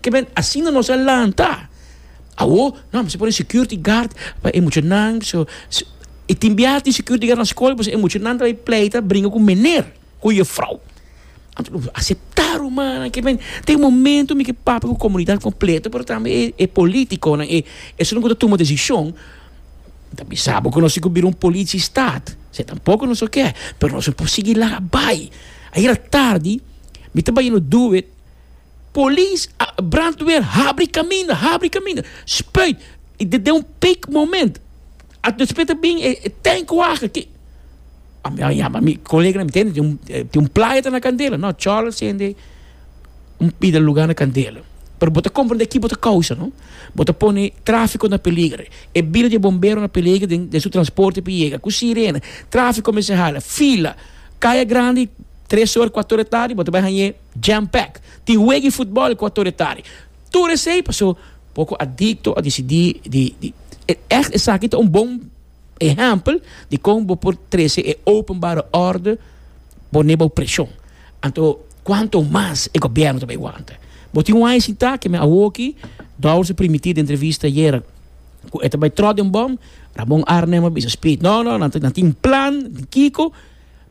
Kebien, asina nos a lanta. Awor, no, mi sa pone security guard pa e muchanan. So, e tin biaha tin security guard na skol, pues e muchanan ta bay pleita, bringa ku meneer, ku yefrouw. Anto nos a aseptá rumannan. Kebien, ta e momento mi ke papia ku komunidat kompleto, pero tambe e, e politikonan, e, esuntu ku ta tuma desishon, ta bisa bo ku nos tin ku bira un politie stat. Esei tampoko nos no ke. Pero nos no por sigui laga bai. Ayera tardi, mi ta bai no duet. Polis a brandweer habri kaminda habri kaminda spuit i den den un peak moment a despues ta bin e tank waga ke a mi a yama mi koleganan mi tende tin un playa ta na kandela no chòl sende un pida lugar na kandela pero bo ta komprende ki bo ta kousa no bo ta pone trafiko na peliger e bida di e bombero na peliger den den su transporte pi yega ku sirena trafiko kumesa hala fila kaya grandi tres ora kuator di tardi bo ta bai hañ'é. Jam pack tin wegi futbal cu a tur etari. Tur esey paso poco adicto a dicidi di di e echt esaki ta un bon ehempel di con bo por trece e openbare orde pone bao presion. Anto cuanto mas e gobierno ta bay wanta. Bo tin un aña sin ta aki me awoki Dowers a primiti den entrevista ayer cu e ta bay trot den bom, Ramon Arnhem a bisa speed no no nan tin plan di kico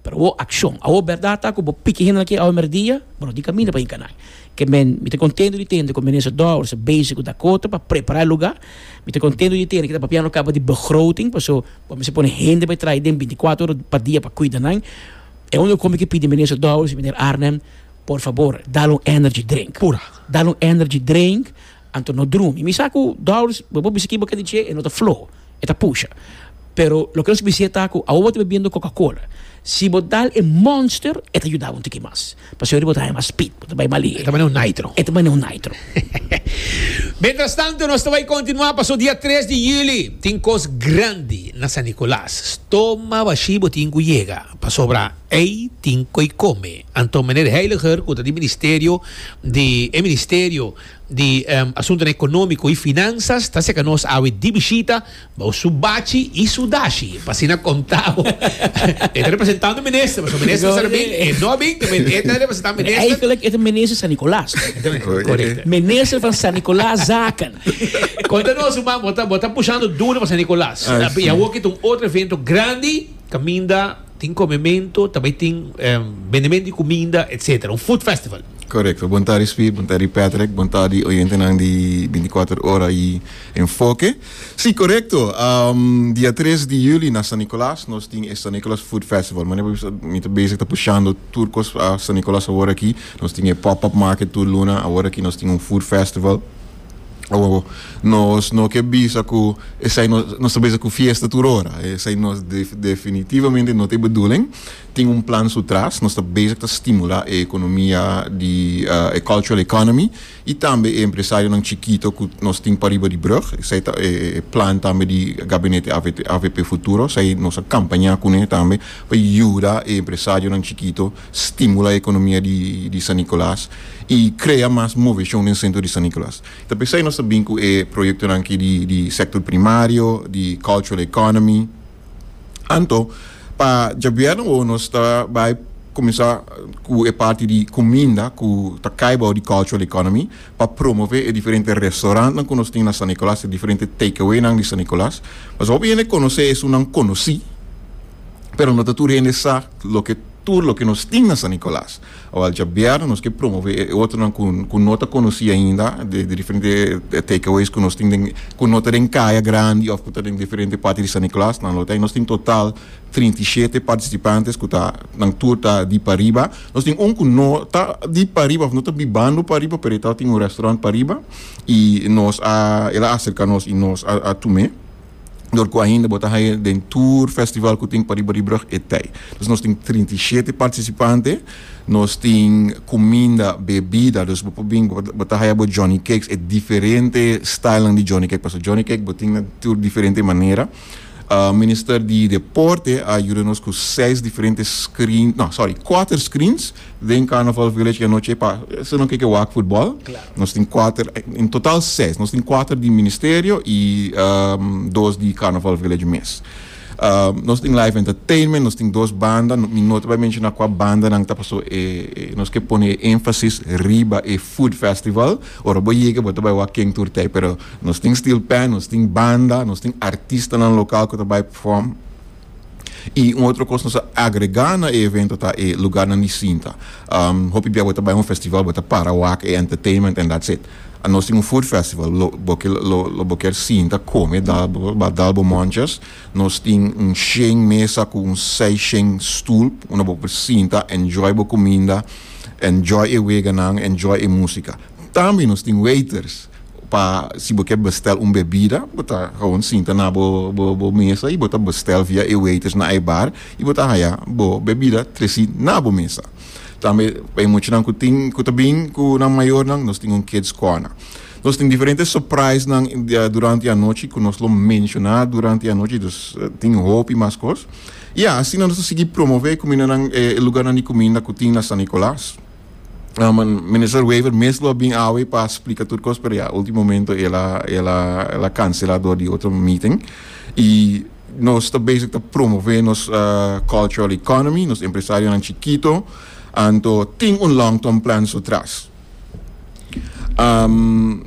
Pero awor akshon. Awor bèrdat ta ku bo piki hende na ke awe mèrdia, bo no tin kaminda pa hinka nan. Ke men, mi ta kontentu di tende ku Minister Dowers ta bezig ku Dakota pa prepará e lugá. Mi ta kontentu di tende ku e ta papia no kaba di begroting, paso bo mester pone hende pa e traha den bintikwatro ora pa dia pa kuida nan. E unu kos mi ke pidi Minister Dowers i Meneer Arnhem, por fabor, dal un energy drink. Pura. Dal un energy drink, Anto no drumi. Mi sa cu Doris, bo por bisa kiba kende dje, e no ta floho, e ta pusha. Pero loke nos bisa ta cu awo bo ta bebiendo Coca-Cola. Si bo dal e Monster, e ta yuda bo un tiki mas. Pasobra bo ta haña mas spit, bo ta bai mas lihe. E ta bane un nitro. E ta bane un nitro. Mientras tanto, nos ta bai continua paso dia tres di juli tin cos grandi na San Nicolas. Stoma bashi bo tin cu yega, pasobra ey tin coy come. Anto Meneer Heiliger, cu ta di Ministerio di, e Ministerio di asuntunan economico y finanzas ta seca nos awe di bishita bao su bachi y su dashi pa asina contabo e ta representando minister pasobra minister sa ta bin e no a bin tambe e ta representa minister. Eigenlijk e ta minister San Nicolas correcto minister van San Nicolas zaken. Conta nos su man bo ta bo ta pushando duro pa San Nicolas y awoki ta un otro evento grandi caminda. Tin comementu, ta bay tin bendementu di cuminda etc. Un food festival. Correcto. Bon tardi Spi, bon tardi Patrick, bon tardi oyentenan di binticuater ora y Enfoke. Si, correcto, dia tres di juli na San Nicolas nos tin e San Nicolas Food Festival. Manera bo bisa mi ta bezig ta pushando tur cos pa San Nicolas awor aki. Nos tin e pop-up market tur luna, awor aki nos tin un food festival. Awor, nos no ke bisa ku esei nos ta bezig ku fiesta tur ora. Esei nos definitivamente no ta e bedoeling. Tin un plan su tras. Nos ta bezig ta stimulá e ekonomia di e cultural economy i tambe e empresarionan chikito ku nos tin pariba di brug. Esei ta e plan tambe di Gabinete avp Futuro. Esei nos a kampañá kuné tambe pa yuda e empresarionan chikito stimula economia di San Nicolas y crea mas movecion den centro di San Nicolas. Ta por esey nos ta bin cu e proyectonan aki di sector primario, di cultural economy. Anto, pa djabièrnè wowo nos ta bay cuminsa cu e parti di cuminda cu ta cay bao di cultural economy pa promove e diferente restaurantnan cu nos tin na San Nicolas, e diferente takeawaynan di San Nicolas. Mas hopi hende conoce esunnan conoci, pero no ta tur hende sa loke. tur loke nos tin na San Nicolas. Awor dja bièrnè nos ke promove e otronan ku ku no ta konosí ainda de de diferente takeaways ku nos tin den ku no ta den kaya grandi òf ku ta den diferente parti di San Nicolas. Nan lo ta nos tin total trinta i shete partisipantes ku ta nan tur ta di pariba. Nos tin un ku no ta di pariba òf no ta bibando pariba pero e tabata tin un restaurant pariba i nos a el a aserka nos i nos a a tum'é. dor cu ainda bo ta haya den tur festival cu tin pariba di brug e tey. Dus nos tin trinta i shete participante, nos tin cuminda, bebida, dus bo por bin, bo ta haya bo Johnny Cakes, e diferente stylenan di Johnny Cake, pasobra Johnny Cake bo tin na tur diferente manera. Minister di Deporte a yuda nos cu seis diferente screens, no, sorry, cuater screens. Den Carnaval Village anochi pa esnan no keke wak futbol. Nos tin kuater, en total seis. Nos tin kuater di ministerio i ehm dos di Carnaval Village mes. Ehm nos tin live entertainment, nos tin dos banda, no mi no ta bai menshoná kua bandanan ta paso e e nos ke pone e énfasis riba e food festival. Ora bo yega bo ta bai wak ken tur t'ei pero nos tin steel pan, nos tin banda, nos tin artistanan lokal ku ta bai perform. Y un otro cos nos a agrega na e evento ta e lugarnan di sinta. Um, hopi bia bo ta bay un festival, bo ta para wak e entertainment and that's it. Uh, nos tin un food festival, lo, bo ke, lo, lo bo ker sinta, come, dal, bo, bo a dal bo monchas. Nos tin un shen mesa cu un sei shen stoel, unda bo por sinta, enjoy bo cuminda, enjoy e weganan, enjoy e musica. Tambe nos tin waiters. Pa si bo ke bestel un bebida bo ta gewoon sinta na bo bo mesa y bo ta bestel via e waiters na e bar y bo ta haya bo bebida tresi na bo mesa. Tambe pa e muchanan cu tin cu ta bin cu nan mayornan nos tin un kids corner. Nos tin diferente surprisenan durante e anochi cu nos lo menciona durante e anochi dus tin hopi mas cos y asina nos ta sigui promove cumindanan e lugarnan di cuminda cu tin na San Nicolas. Minister Wever mes lo bin awe pa splika tur kos pero ya ultimo momento el a el a el a cancela door di otro meeting y nos ta bezig ta promove nos uh, cultural economy nos empresarionan chikito anto tin un long term plan so tras. Um,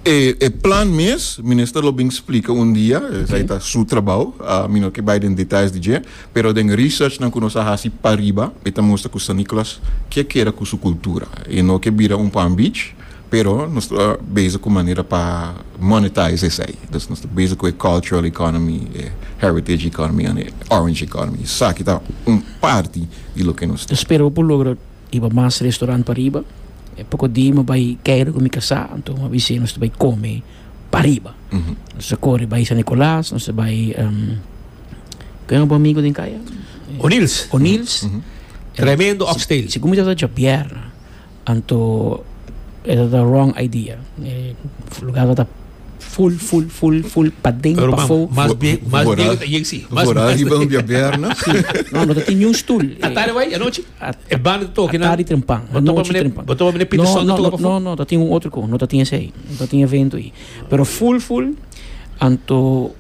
E e plan mes, minister lo bin splika un dia, esei ta su trabou, a mi no ke bai den details di dje, pero den researchnan ku nos a hasi pa riba, mi ta mustra ku San Nicolas ke keda ku su kultura. E no ke bira un Palm Beach, pero nos ta bezig ku manera pa monetize esei. Dus nos ta bezig ku e cultural economy, e heritage economy, and e orange economy. Esaki ta un parti di loke nos ta. Spero bo por logra. I bo mas restaurant pariba. E poko di mi bai Keiro ku mi kasá, anto mi a bis'é nos ta bai kome pariba. Nos ta kore bai San Nikolaas, nos ta bai ku e otro amigu den kaya? O'Neills. O'Neills. Tremendo oxtail. Si ku mi tabata djabièr, anto e tabata wrong idea. E lugá tabata ful, ful, ful, ful, paden, pafó. Pero mas bien, mas bien ta JC. Vorá riba un djabièr, no? No, no ta tin niun stul. Ta tarde bai, anochi? E banda ta toki na? Atari trempan. Bo topa mene, bo topa mene Peter Song no, toka no, no, no, ta tin un otro ko, no ta tin ese ei. No ta tin evento ei. Pero full full anto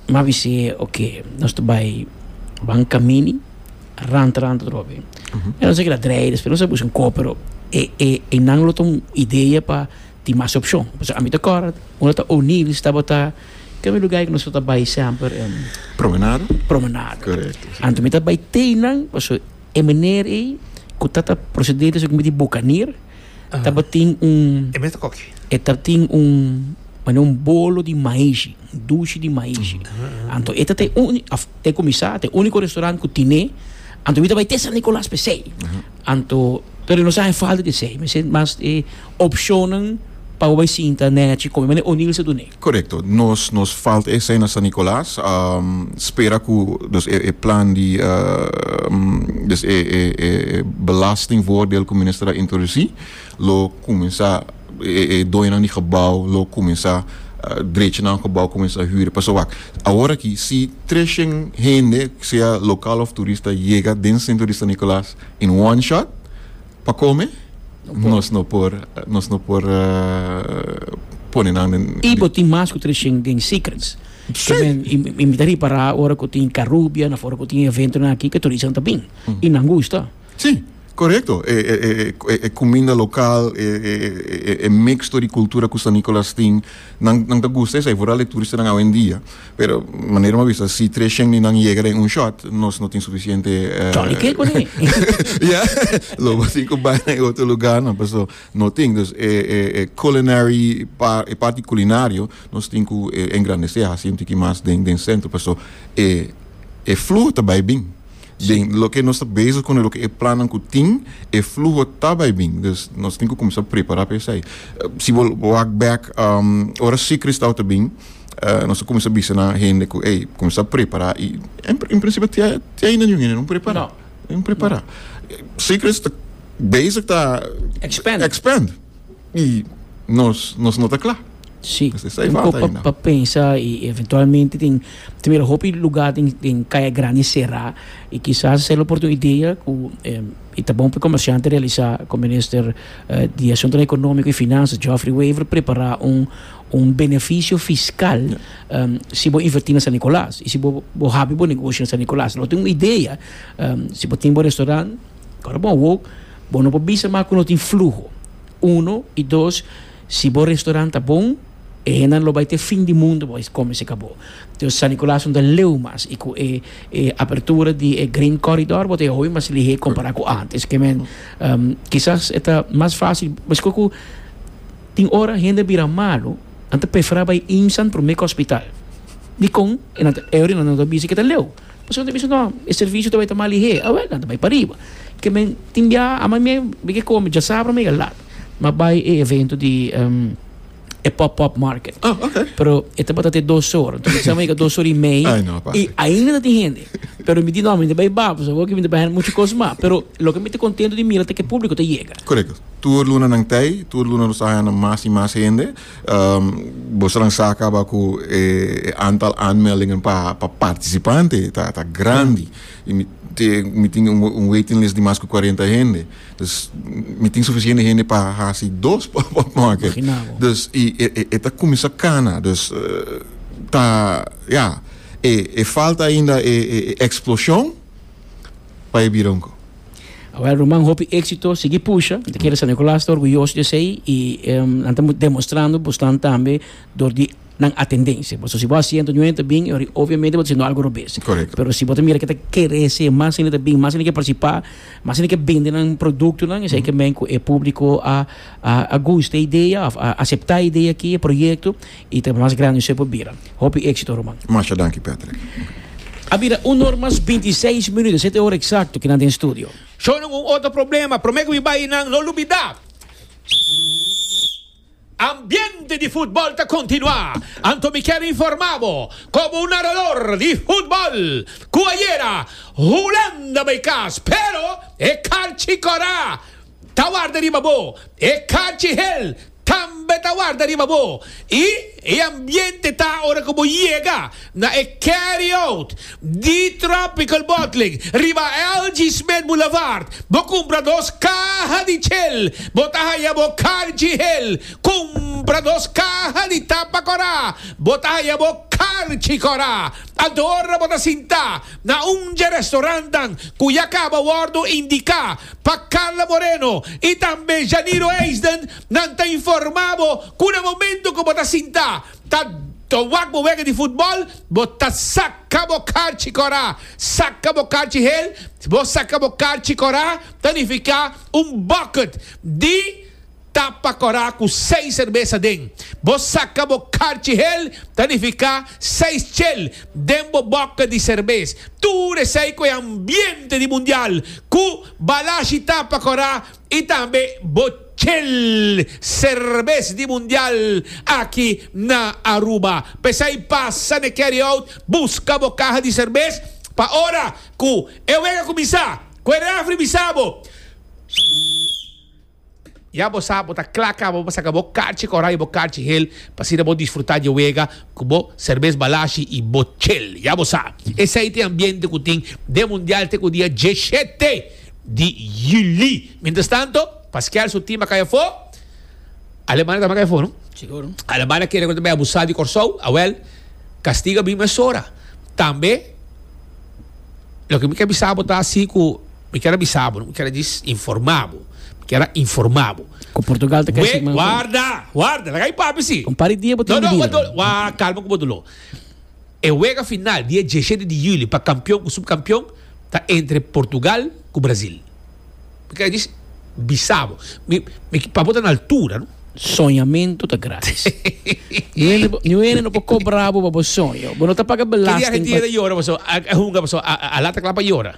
ma bisi ok, nos ta bai ban kamini ranta ranta drobe. Uh -huh. En nos a keda drei después nos a buska un ko, pero e e e nan lo ta un idea pa Tin mas opshon, pasobra ami ta kòrda unda ta O'Neill's tabata ken mi lugá ei ku nos tabata bai semper en. Promenada. Promenada. Korekto, si. Anto mi ta bai te einan pasobra e meneer ei ku tata proseder di su ku mi di Bokanier tabatin un. E mes ta koki. E tabatin un manera un bolo di maishi, un dushi di maishi. Anto e tabata e uni, òf te kuminsá, ta e uniko restaurant ku tine. Anto mi ta bai te San Nikolas p'esei. Anto, pero nos a falta di esei. Mi sent mas e opcionnan pa bo bai sinta neci con meneer O'Neill sa dun'e. Corecto. Nos nos falta esei na San Nicolas. Spera cu dus e e plan di dus e e e belastingvoordeel cu minister a introduci lo cuminsa. E doñonan di gebou lo kuminsá drecha nan gebou, kuminsá hüri. Pasobra wak, awor aki si treshèn hende, sea lokal òf turista, yega den sentro di San Nikòlas in one shot pa kome, nos no por nos no por pone nan den. I bo tin mas ku treshèn den Secrets. Ke men i mi ta ripará ora ku tin Karubia na for ku tin eventonan aki ke turistanan ta bin i nan gusta. Sí, korekto. E e kuminda lokal, e e mixto di kultura ku San Nikolas tin, nan nan ta gusta esei, vooral e turistanan awendia. Pero manera mi a bisa, si tres shen di nan yega den un shot, nos no tin sufisiente, eh, Johnny Cake uni. Ya, lo bo tin ku bai na e otro lugarnan, paso no tin. Dus e e e culinary pa, e parti kulinario nos tin ku engrandesé, hasi un tiki mas den den sentro, paso e e fluho ta bai bin. den loke nos ta bezig con e loke e plannan cu tin e fluho ta bay bin dus nos tin cu cuminsa prepara pa esai si bo wak bek ora si Cristao ta bin nos ta cuminsa bisa nan hende cu ey cuminsa prepara y en principio te ainda niun hende no prepara no prepara si Cristo ta bezig ta expand. Y nos nos no ta cla. Sí, Nos ta esai un falta poco ainda. pa pensa y eventualmente tin timero hopi lugar den den caya grandi cerá y kisas esei lo por un idea cu em, y ta bon pa e comerciante realisá cu minister eh, di Asuntonan Economico y Finanzas Geoffrey Wever prepará un un beneficio fiscal em, si bo invertí na San Nicolas y si bo bo habi bo negoshi na San Nicolas. Lo tin un idea em, si bo tin bo restaurant Ora bo a wok, bo no por bisa mas ku no tin fluho. Uno i dos, si bo restaurant ta bon, e hendenan lo bai te fin di mundu bai kome serka bo. Entonces San Nicolas no ta leu mas i ku e e apertura di e Grain Corridor bo ta e hui mas lihé kompará ku ántes. Ke men, kisas e ta mas fásil, meskos ku tin ora hende a bira malu, nan ta preferá bai IMSAn promé ku hospital. Dikon? E nan ta, e ora nan ta bisa ku e ta leu. Pasobra ta bisa no, e servisio ta bai ta mal lihé. Awel, nan ta bai pa riba. Ke men tin biaha, ama mi bai ke kome, djasabra mi a lat. Mi a bai e evento di e pop-up market. Oh, ok. Pero e tabata te dos or. Enton mi sa mi a yega dos or i mei. Ay, no a pasa. I ainda ta tin hende. Pero mi di no, mi ta bai ba, pasobra hopi mi ta bai hèn muchu kos mas. Pero loke mi ta kontento di mira ta ke públiko ta yega. Korekto. Tur lunanan t'ei, tur lunan lo sa hañando mas i mas hende. Bo esnan sa kaba ku e antal aanmeldingen pa partisipante ta grandi i mi tin mi tin un waiting list di mas ku kuarenta hende dus mi tin sufisiente hende pa hasi dos potmake dus i e ta kuminsá kana dus ta ya e falta ainda e eksploshon pa e bira un kos. Awel Roman, hopi éxito, sigui pusha. Te kere San Nicolas ta orguyoso di esei i um, nan ta demostrando bosnan tambe dor di nan atendencia. Boso, si bo a siento ñu ta bin, ori obviamente bo ta siendo algo robes. Correcto. Pero si bo ta mira ke ta kere hese, mas hende ta bin, mas hende ke participa, mas hende ke bende nan productonan, esei ke men ku e publico a a a gusta e idea of a acepta e idea aki, e proyecto. I ta mas grandi sui pa bira. Hopi exito ruman. Masha danki Patrick. A bira un or mas binti seis minuto, sete ora exacto ki nan den studio. Shonen un otro problema prome cu mi bay y nan no lubida ambiente di futbol ta continua anto mi kier informa bo como un narador di futbol cu ayera Hulanda bay cas pero e carchi cora ta warda riba bo, e kachi hel tambe ta warda riba bo, i e ambiente ta ora ku bo yega na e carry out di Tropical Bottling riba LG Smith Boulevard, bo kumpra dos kaha di chel, bo ta haya bo karchi hel, kumpra dos kaha di tapa kòrá, bo ta haya bo karchi kòrá. Anto ora bo ta sinta na un dje restorantnan ku ya kaba wòrdu indiká, Pa Carla Moreno y tambe Janiro Eisden nan ta informa bo cu na momento cu bo ta sinta ta ta wak bo wega di futbol bo ta saca bo carchi cora. Saca bo carchi hel bo saca bo carchi cora ta nifica un bucket di Tapa kòrá ku seis serbesa den. Bo saka bo karchi hel, ta nifiká seis chel den bo bòkke di serbes. Tur esei ku e ambiente di mundial ku balashi tapa kòrá i tambe bo chel serbes di mundial aki na Aruba. P'esei pasa n'e carryout buska bo kaha di serbes pa ora ku e wega kuminsá, ku e refri bisa bo, Ya bo sa bo ta kla kaba pa saka bo karchi kora i bo karchi hel pa asina bo disfruta dje wega ku bo serbes balashi i bo chel. Ya bo sa esei ta e ambiente ku tin den mundial te ku dia dieshete di yuli. Mientras tanto paskial su team a kai afó. Alemania tambe a kai afó no? Alemania kere konta bai abusa di Kòrsou awèl kastigo a bin mesora tambe. Loke mi ke bisa bo ta si ku. Mi kier a bisa bo, mi kier a dis, informa bo, mi kier a informa bo. Ku Portugal ta kai sigman ku. Warda, warda, laga e papia si. Un par di dia bo tin di bira. Wa kalma ku bo doló. E wega final dia diesshete di julio pa kampion ku supkampion ta entre Portugal ku Brasil. Mi kier a dis, bisa bo. Mi, mi pa bo ta na altura no. Soñamentu ta gratis. Ni un hende no por kobra bo pa bo soño. Bo no ta paga belasting pa. Ki dia e hende ta yora paso a hunga paso a lata kla pa yora.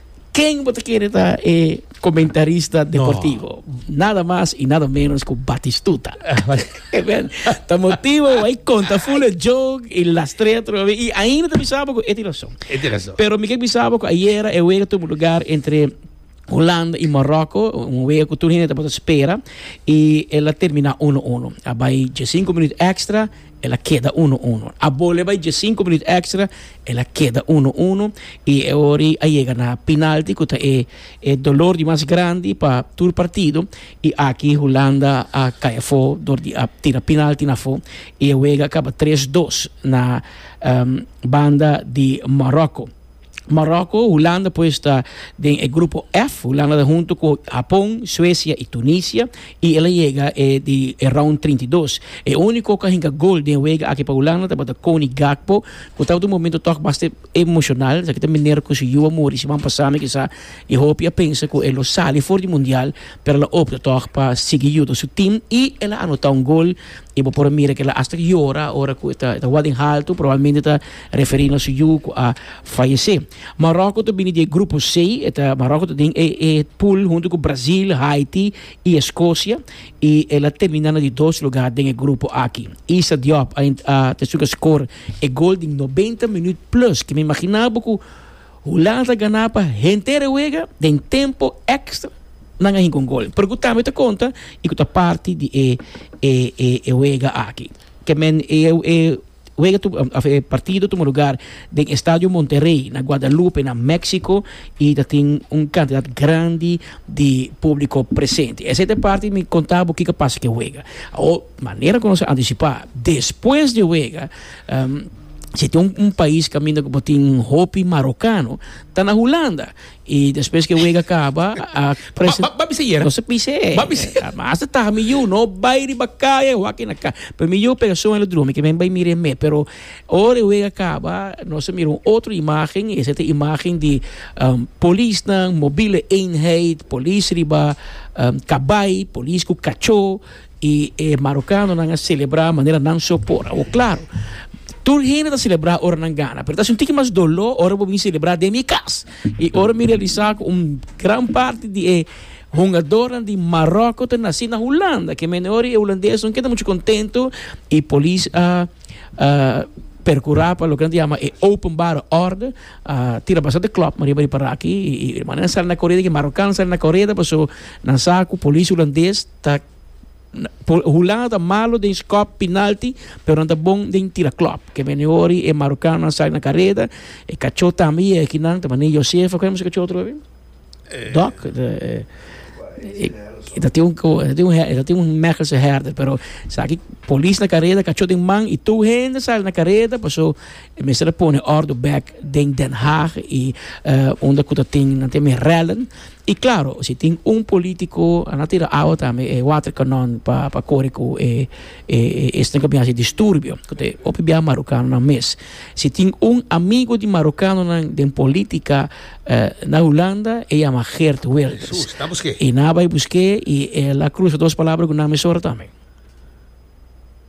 Ken bo ta kere ta e comentarista deportivo? Nada mas y nada menos ku Batistuta. Amen. Ta motivo wai konta full e joke y lastrea trobe y ainda ta bisa bo ku e tin razón. E tin razón. Pero mi ke bisa bo ku ayer e wega tubu lugar entre Holanda y Morocco, un wega ku tur hende tabata spera y el a termina uno uno. A bai dies sinko minuut extra. el a keda uno uno. A bole bai dje sinku minuut èkstra, el a keda uno uno i e ori a yega na pinalti ku ta e e dolor di mas grandi pa tur partido i aki Hulanda a kai afó dor di a tira pinalti na afó i e wega a kaba tres dos na banda di Maròkko. Marokko, Hulanda pues ta den e grupo F. Hulanda ta hunto ku Hapon, Suesia i Tunisia i el a yega e di e round 32. E úniko ku a hinka gol den wega aki pa Hulanda tabata Cody Gakpo ku tabata un momento tòg bastante emoshonal esaki ta manera ku su yu a muri siman pasá mi kisá e hopi a pensa ku e lo sali for di mundial pero el a opta tòg pa sigui yuda su tim i el a anotá un gol i bo por a mira ku el a asta yora ora ku e ta wak den haltu probablmente ta. Referí nos yu ku a fayesé. Maròko ta bini di e grupo C, e ta Maròko ta den e e pool huntu ku Brazil, Haiti i Escocia i el a terminá na di dos lugá den e grupo aki. Issa Diop a a ta estuka skor e gol di nobenta minüt plus ke mi imaginá bo ku Hulanda ta ganá pa henter e wega den tempo èkstra nan a hinka un gol pero ku tambe ta konta i ku ta parti di e e e wega aki. Ke men e e. Wega tu of e partido tuma lugar den Estadio Monterrey na Guadalupe na Mexico y ta tin un cantidad grandi di publico presente. Esey ta e parti mi conta bo kico pasa cu e wega. Awor, manera cu nos a anticipa, despues di e wega, si tin un pais caminda cu bo tin hopi Marocano ta na Hulanda. Y despues ke wega kaba a prese. Ba bisa yera. No se pise. Ba bisa. Mas ta mi yu no bai riba kaya e waki na ka. Pero mi yu pega son e lo drumi ke men bai mire me. Pero ora e wega kaba nos a mira un otro imagen y ese ta imagen di polisnan, mobiele eenheid, polis riba kabai, polis ku kacho. I e marokanonan a selebrá manera nan so por. Awor klaru, tur hende ta selebrá ora nan gana, pero ta sinti ki mas doló ora bo bin selebrá den mi kas. I ora mi realisá ku un gran parti di e hungadornan di Maròko ta nasí na Hulanda, ke mihor i e hulandes no keda muchu kontentu i polis a perkurá pa loke nan ta yama e openbare òrde, a tira bastante klòpman riba di paraki i manera nan sali na koreda, ke marokan sali na koreda paso nan sa ku polis hulandes. ta hulá ta malo den skop pinalti pero nan ta bon den tira klop ke meni ori e marokano nan sai na kareda e kachó tambe yega ki nan ta mane Josefa ku e mester kachó otro vez dok e ta tin un e ta tin un mechelse hèrder pero esaki polis na kareda kachó den man i tur hende sali na kareda paso e mester a pone òrdu bèk den Den Haag i unda ku ta tin nan tin mi rèllen Y claro, si tin un politico a na tira awa tambe e water canon pa pa core cu e e e esten cu a bin haci disturbio. Cu ta e hopi biaha Marocanonan mes. Si tin un amigo di Marocanonan den politica na Hulanda e yama Geert Wilders. Jesús, ta busqué. Y nan a bay busqué y el a cruza dos palabra cu nan mesora tambe.